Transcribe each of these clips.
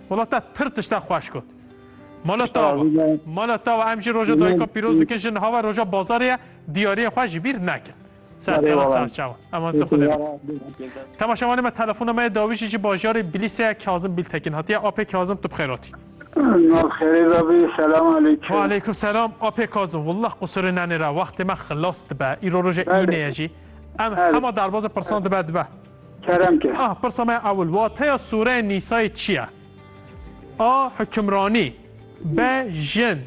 Wala te pir tişta xweş got. Mala tawa. Mala tawa em jî roja dayika pîroz dikin jin hava roja bazarê ye diyariyê xwe jî bîr nekin. Ser ser ser çawa. Eman tu xwe Temaşevanê me telefona me dawîjî ji bajarê Bilîse Kazim Biltekin hatiye apê Kazim tu bixêr hatî. Xêrê dabî selam aleykum. Wa aleykum selam apê Kazim. Wallah qusurê nenê re wextê me xilas dibe. Îro roja îne ye jî. Em hema derbaze pirsan dibe dibe. kerem ke. A. Pirsa me ya ewil, wateya sûreya Nîsayê çi ye? A. Hukimranî B. Jin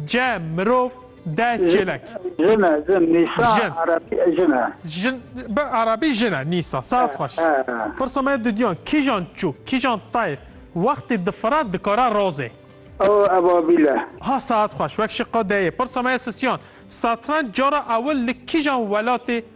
C. Mirov D. Çêlek Jin e, jin. Nîsa Jin. erebî jin e. Jin, bi erebî jin e, Nîsa. Saet xweş. He. Pirsa me ya duduyan, kîjan çûk, kîjan tayr wextê difire dikare razê? A. Ebabîl e. Ha, saet xweş. Wek şiqa D yê. Pirsa me ya sisiyan, satrenc cara ewil li kîjan welatê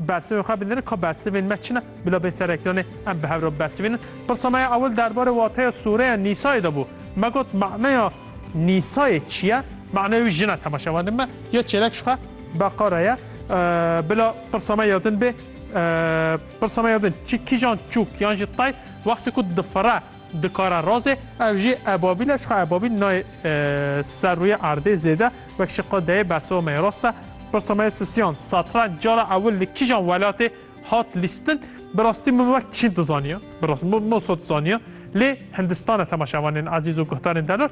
Bersivên xwe binirin ka bersivên me çi ne? Bila bê serekiranê em bi hev re bibersivînin. Pirsa me ya ewil derbarê wateya sûreya Nîsayê de bû. Me got maneya Nîsayê çi ye? Maneya wî jin e tema şevanên me ya çêlek ji xwe Beqara ye. Bila pirsa me ya din bê. Pirsa me ya din çi kîjan çûk yan jî tay wextê ku difire. Dikare razê ev jî ebabîl e çka ebabîl nayê ser rûyê erdê zêde wek ji qe deyê bersiva me yê rast e. Pirsa me yê sisiyan satranc cara ewil li kîjan welatê hat lîstin? Bi rastî min wek çîn dizaniya bi rastî min moso dizaniya lê hindistan e temaşevanên ezîz û guhdarên delor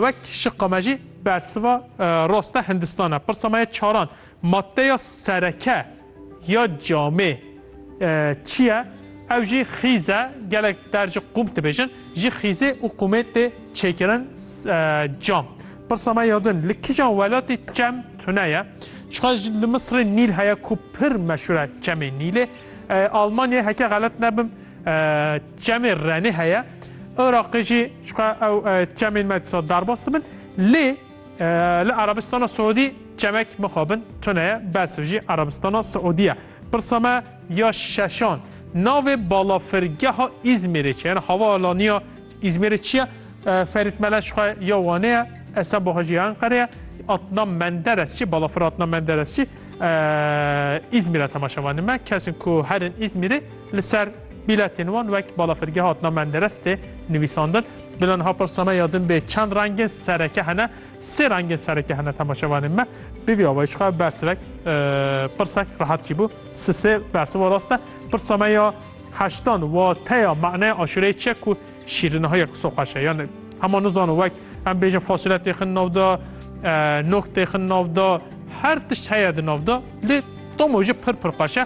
wek ji qe me jî bersiva rast e hindistan e. Pirsa me yê çaran maddeya sereke Ya camê çi ye? Ew jî xîz e. Gelek der ji qûm dibêjin. Ji xîzê û qûmê tê çêkirin cam. Pirsa me ya din, li kîjan welatê çem tune ye? Çiqa li Misirê Nîl heye ku pir meşûr e çemê Nîlê. Almanyayê heke xelet nebim çemê Renê heye. Iraqê jî çiqa ew çemên me dîsa derbas dibin. Lê Li Erebistana Siûdî çemek mixabin tune ye, bersiv jî Erebistana Siûdî ye. Pirsa me ya şeşan, navê balafirgeha Îzmîrê çi ye? Havaalaniya Îzmîrê çi ye? Ferît Meleş xwe ya Wanê ye, Esen Boha jî ya Enqerê ye. Adnan Menderes çi? Balafir Adnan Menderes çi? Îzmîre temaşe vanê me. Kesin ku herin Îzmîrê li ser bîletên wan wek balafirgeha Adnan Menderes tê nivîsandin. Bila niha pirsa me ya din bê çend rengên sereke hene? Sê rengên sereke hene temaşevanên me. Bi vî awayî çiqe bersivek pirsek rehat jî bû. Sisê bersiva rast e. Pirsa me ya heştan wateya maneya aşureyê çi ye ku şîriniha ye ku so xweş e. Yani hema nizano wek em bêjin fasile têxin nav da, nok têxin nav da, her tişt heye di nav da lê doma jî pir pir xweş e.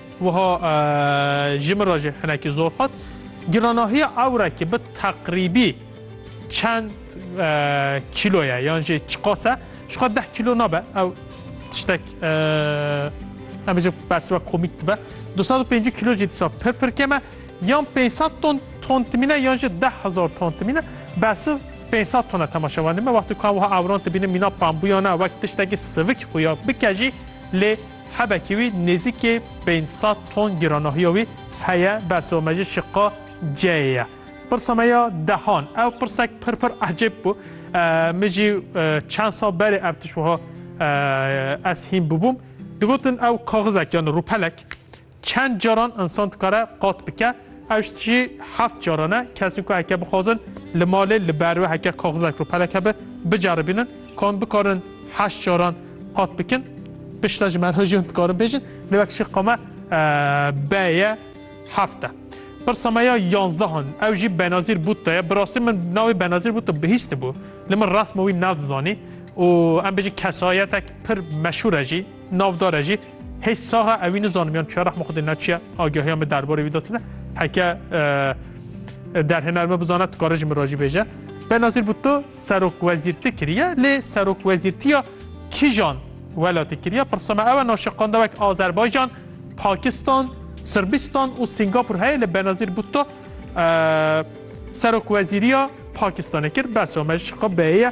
Wiha ji min re jî hinekî zor hat. Giranahiya ewrekî bi teqrîbî çend kîlo ye yan jî çiqas e? Ji xwe deh kîlo nabe ew tiştek em bêjin bersiva komîk dibe. 250 kîlo jî disa pir pir kem e. Yan 500 ton ton timîne yan jî 10000 ton timîne. Bersiv 500 tona temaşevanê me wextê ku em wiha ewran dibînin mîna pambûyan e wek tiştekî sivik xuya bike jî lê Hebekî wî nêzîkê pênc sed ton giranahiya wî heye, bersa me jî şiqa ceyê ye. Pirsa me ya dehan, ew pirsek pir pir ecêb bû. Min jî çend sal berê ev tişt wiha ez hîn bûbûm. Digotin ew kaxizek yan rûpelek Çend caran insan dikare qat bike? Ew ji tijî heft caran e. Kesên ku heke bixwazin li malê li ber we heke kaxizek û pelek hebe biceribînin ku em bikarin heşt caran qat bikin. Pişta ji me re jî hûn dikarin bêjin. Lê wek şî qama be ye heft e. Pirsa me ya yanzdehan ew jî Benazîr Bûtto ye. Bi rastî min navê Benazîr Bûtto bihîstibû. Lê min resma wî nedizanî û em bêjin kesayetek pir meşhûr e jî, navdar e jî. Hey saxa ewi nizanim yan çiya rehma xudê neçiya agahiya me derbarê wî datîne heke derhêner me bizana dikare ji min rajî bêje. Benazîr Bûto serok wezîrti kiriye lê serok wezîrtiya kîjan welatê kiriye pirsa me ewe naşiqanda wek Azerbaycan, Pakistan, Sırbistan û Singapur heye lê Benazîr Bûto serok wezîriya Pakistanê kir bersa me ji qe beye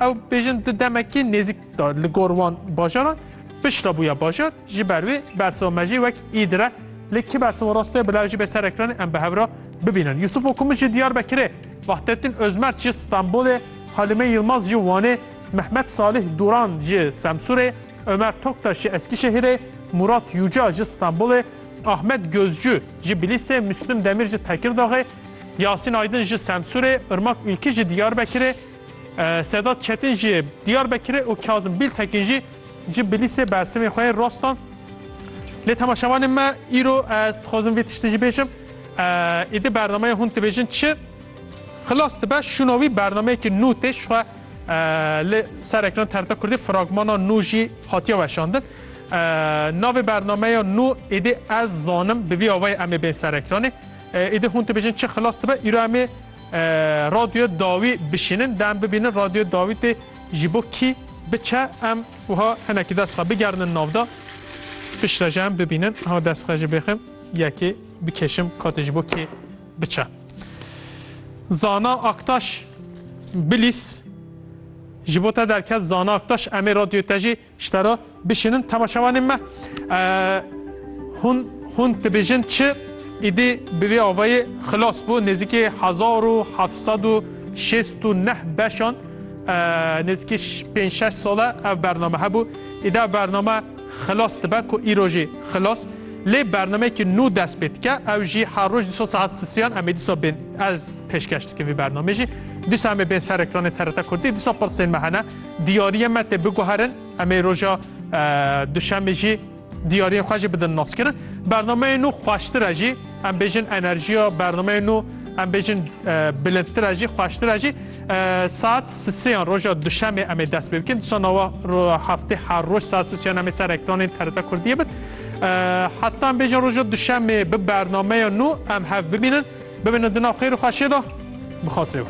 Ew bêjin di demekî nêzik da li gor wan bajaran pişra bûya bajar ji ber wê bersiva me jî wek îdir e. Lê kî bersiva rast e bila ew jî bê ser ekranê em bi hev re bibînin. Yusuf Okumuz ji Diyarbekirê, Vahdettin Özmert ji Stenbolê, Halime Yilmaz ji Wanê, Mehmet Salih Duran ji Semsûrê, Ömer Toktaş ji Eskişehirê, Murat Yuca ji Stenbolê, Ahmet Gözcü ji Bilîsê, Müslüm Demir ji Tekirdaxê, Yasîn Aydin ji Semsûrê, Irmak Ülkî ji Diyarbekirê, Sedat Çetin ji Diyarbekirê û Kazim Biltekin jî ji Bilîsê bersimên xwe yên rast dan. Lê temaşevanên me îro ez dixwazim vê tiştê jî bêjim. Êdî bernameyê hûn dibêjin çi? Xilas dibe şûna wî bernameyekî nû tê ji xwe li ser ekran TRT Kurdî fragmana nû jî hatiye weşandin. Navê bernameya nû êdî ez zanim bi vî awayê em ê bên ser ekranê. Îdi hûn dibêjin çi xilas dibe? Îro em ê radyoya dawî bişînin, dem bibînin radyoya dawî tê ji bo kî biçe em wiha hinekî dest xwe bigerinin navda. Piştre ji em bibînin ha dest xwe ji bêxim yekê bikeşim katê ji bo kê biçe. Zana Aktaş Bilîs ji bo te derket Zana Aktaş em ê radyoya te jî Ji te re bişînin temaşevanên me. Hûn hûn dibêjin çi? Îdî bi vê avayê xilas bû nêzîkî hezar û heft sed û şêst û neh beşan nêzîkî pênc şeş sale ev bername hebû. Îdî ev bername xilas dibe ku îro jî xilas. Lê bernameyekî nû dest pê dike. Ew jî her roj dîsa saet sisiyan em ê dîsa bên ez pêşkêş dikim vî bernamê jî. Dîsa em ê bên ser ekranê TRT Kurdî. Dîsa pirsên me hene. Diyariyên me tê biguherin. Em ê roja duşemê jî diyariyên xwe jî bidin naskirin. Bernameyên nû xweştir e jî em bêjin enerjiya bernameyên nû em bêjin bilindtir e jî xweştir e jî saet sisêyan roja duşemê em ê dest pê bikin. Disa nawa heftê her roj saet sisêyan em ê ser ekranên TRT Kurdiyê bit. Heta em bêjin roja duşemê bi bernameya nû em hev bibînin. Bibînin di nav xêr û xweşiyê de bi xatirê.